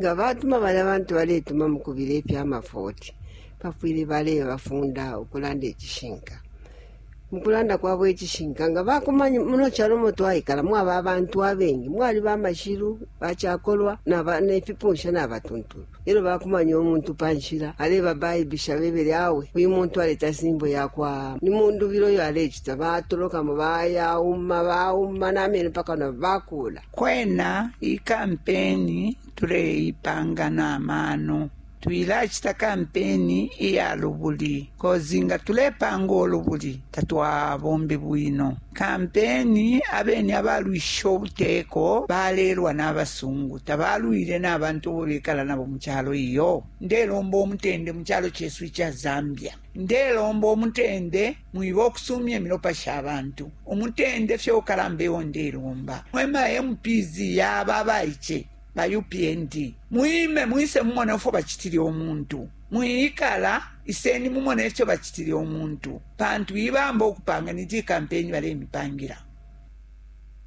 nga batuma balya bantu baletuma mu kubila ifya mafoti bafwile balebafunda ukulanda icishinka mu kulanda kwabo icishinka nga bakumanya muno calo mo twaikala mwaba abantu abengi mwali bamashilu bacakolwa nefipunsha nabatuntulu elo bakumanya umuntu pa nshila aleba baibisha bebele awe uyu muntu aleta simbo yakwa ni mundubilo yo alecita batolokamo bayauma bauma namene paka na bakula Kwena iyi kampeni tuleipanga na mano. Twilacita kampeni iya lubuli cause nga tulepanga ulubuli tatwabombe bwino kampeni. Abeni abalwishishe ubuteko balelwa na basungu, tabalwile na bantu abo bekala nabo mu calo iyo. Ndelomba umutende mu calo cesu ica Zambia. Ndelomba umutende. Mwiba ukusumya imilopa sha bantu. Umutende fye ukalamba eo ndelomba mwe ma MPs ya aba abaice ba upnd. Mwime mwise mumone ufwo bacitile umuntu. Mwiikala, iseni mumone ifyo bacitile umuntu pantu ibamba ukupanga ni ji campaign balemipangila.